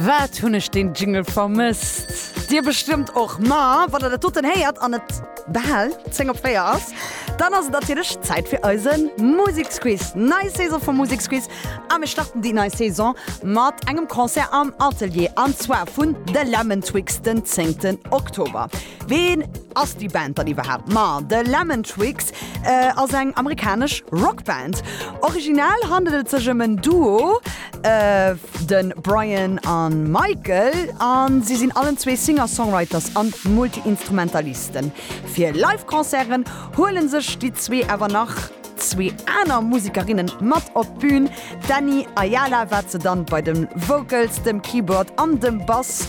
Wat hunn ech deen Jingle vermësst! Dir bestëmmt och, ma wann der dat doten héiert an et bal 10 op 4 ass, dann ass et natierlech Zäit fir eise Museksquiz. Nei Saison vum Museksquiz a mir starten déi nei Saison mat engem Concert am Atelier an zwar vun The Lemon Twigs den 10 Oktober. Ween ass déi Band dann iwwerhaapt? Ma The Lemon Twigs ass eng amerikanesch Rockband. Original handelt et sech ëm en Duo, de Brian a Michael, a si sinn allen zwee Singer-Songwriters a Multi-Instrumentalisten. Fir Live-Concerten huele sech déi zwee awer nach zwee aner Musekerinne mat op d'Bün, d'Annie Ayala, wat se dann bei de Vocals, dem Keyboard an dem Bass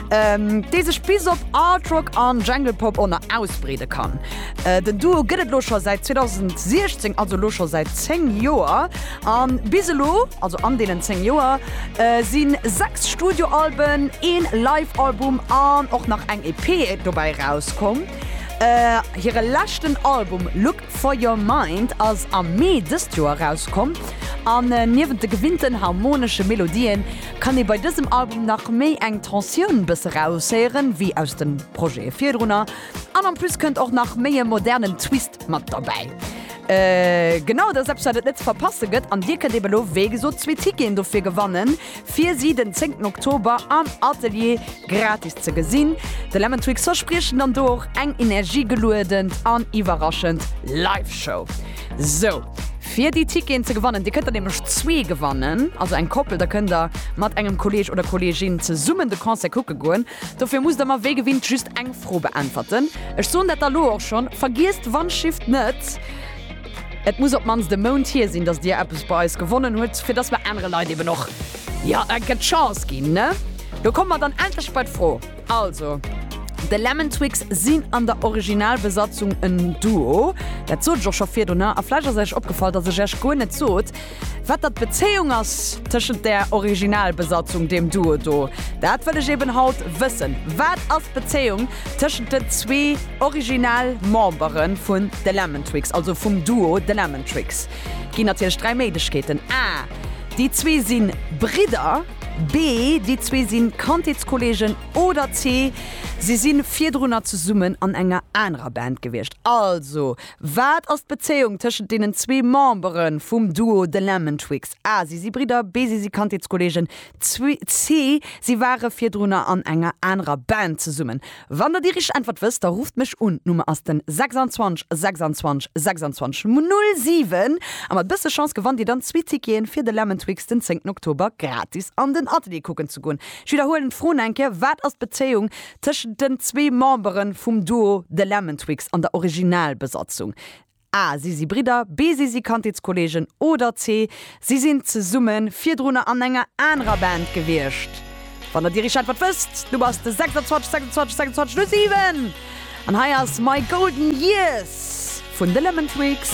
dee sech bis op Artrock an Janglepop ënner ausbreede kann. Den Duo gëtt et lo scho säit 2016, also lo scho säit 10 Joer. An bis elo, also an deenen 10 Joer, si 6 Studioalben, een Live-Album an och nach eng EP dobäi erauskomm. Hire leschten Album Look For Your Mind ass am Mee dëst Joer erauskomm an niewent de gewinnten harmonesche Melodien, Kann ee bei dësem Album nach méi eng Tensioun bësse raushéieren, wéi aus de Projete virdrunner. An en plus kënnt och nach méi e modernen Twist mat derbäi. Genau, dat ass eppes wat et net ze verpasse gëtt. An dir kënnt eben elo wéi gesot zwee Ticketen dofir gewannen, fir si den 10 Oktober am Atelier gratis ze gesinn. De Lemon Twig verspriechen dann do och eng energiegeluedent an iwwerraschend Live-Show. Sou, fir déi Ticketen ze gewannen, Dir kënnt der nämlech zwee gewannen, also eng Koppel, da kënnt der mat engem Kolleeg oder Kolleegin zesummen de Concert kucke goen. Dofir musst der mer wéi gewinnt just eng Fro beäntwerten. Ech soen dat da lo och schonn, Vergiesst d'Wandschifft net! Et muss op d'mannst e Mount hier sinn, datt Dir eppes bei eis gewonnen hutt, fir datt mer anere Leit eben och, jo, eng Kéier d'Chance ginn, ne? Lo komme mer dann endlech bei d'Fro. Also, de Lemon Twix sinn an der Originalbesatzung en Duo. Dat sot ech och scho virdrunner. A vläicht ass Iech opgefall, dass ech Iech guer net sot, wat dat d'Bezéiung ass tëschent där Originalbesatzung, deem Duo do. Dat wëll ech eben haut wëssen. Wat ass d'Bezéiung tëschent den zwee Originalmembere vun de Lemon Twix, also vum Duo de Lemon Twix? Ginn natierlech dräi Méiglechkeeten, A, Déi zwee si Bridder. B, Déi zwee si Kandheetskolleegen. Oder C, Si si virdrunner zesummen an enger anerer Band gewiescht. Also, wat ass d'Bezéiung tëschent deenen zwee Membere vum Duo The Lemon Twigs? A, Si si Bridder. B, Si si Kandheetskolleegen. C, Si ware virdrunner an enger anerer Band zesummen. Wann der déi richteg Äntwert wësst, da rufft mech un. D'Nummer ass den 26 26 26 07 a mat bësse Chance gewannt dir dann zwee Ticketen fir de Lemon-Twix den 10 Oktober gratis an den Atelier kucken ze goen. Ech widderhuelen d'Froen eng Kéier, Wat ass d'Bezéiung tëschent den zwee Memberen vum Duo The Lemon-Twix an der Originalbesatzung? A, Si si Bridder, B, Si si Kandheetskolleegen oder C, Si sinn zesumme virdrunner an enger anerer Band gewiescht. Wann der Dir iech d'Äntwert wësst, du bass de 26 26 26 07 an hei ass My Golden Years vun de Lemon Twigs.